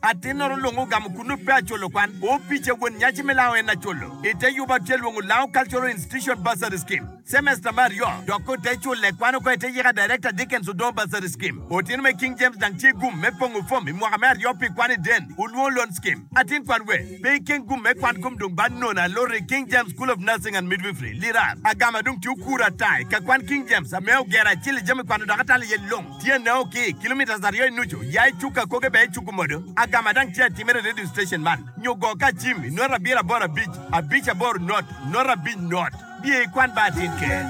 Atinnoro lung ogamo kunnu pe acolo kwan. Opica won nyaci me lango en acolo. I te yuba tye lwongo lango Cultural Institution Bursary Scheme. Semester me aryo dok ote culle kwan oko ete yika Director Dickens odongo Bursary Scheme. Otino me King James dang tye gum me pongo fom i mwaka me aryo pi kwan i den olwongo Loan Scheme. Atin kwan we pe ikeng gum me kwan kom dong bad nona aloro i King James School of Nursing and Midwifery, Lirar. Agama dong tye okura ata i ka kwan King James ame ogero acel i jami kwano dok atalo iye lung. Tyene o ki kilometres aryo i nucu, ya i cuk akoge bene icuku modo. Agama dang tye atimere i radio station man, nyo go ka acim i nota abiro aboro abic, abic aboro not, nota abic not. Biye i kwan ba atin ker.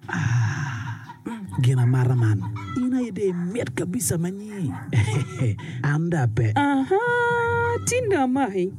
Ah, gin amata man. In aye de imit kabisa manyi. An da pe. Aha, tin do amaki.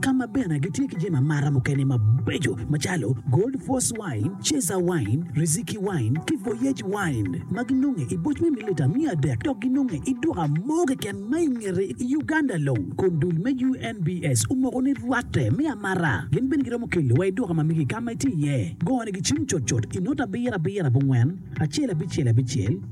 ka ma bene gitye ki jami amata mukene mabeco macalo Gold Force Wine, Cesar Wine, Riziki Wine, ki Voyage Wine ma ginonge i boc me mililita miya adek dok ginonge i duka mo keken ma i ngete i Uganda long. Kun dul me UNBS omoko ni rwatte me amata gin bene giromo kelo wa i duka ma megi ka ma itye iye. Gone gicim cutcut i note abiro abiro abongwen, acel abicel abicel.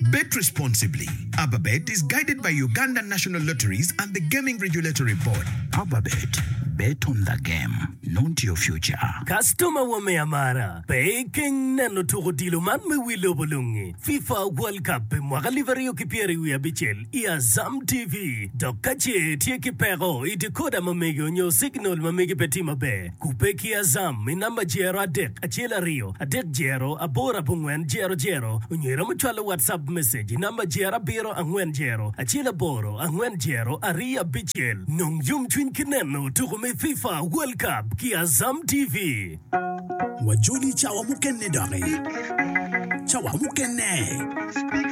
Bet Responsibly, AbaBet is guided by Uganda National Lotteries and the Gaming Regulatory Board. AbaBet, Bet on the game, not your future. Kastoma wa me amara, pe ikeng neno tuk odilo man me wi lobo lungi, FIFA World Cup pi mwaka alip aryo ki pyeri wiye abicel i Azam TV. Dok ka ce itye ki peko i decoder ma mege onyo signal ma mege pe tye maber, Kubbe ki Azam i namba jero adek acel aryo adek jero aboro abongwen jero jero onywelo me cwalo WhatsApp message i namba jero abiro angwen jero acel aboro angwen jero aryo abicel. Nong yomcwiny ki neno tuko me FIFA World Cup ki Azam TV. Wajoli cawa mukene doki. Cawa mukene.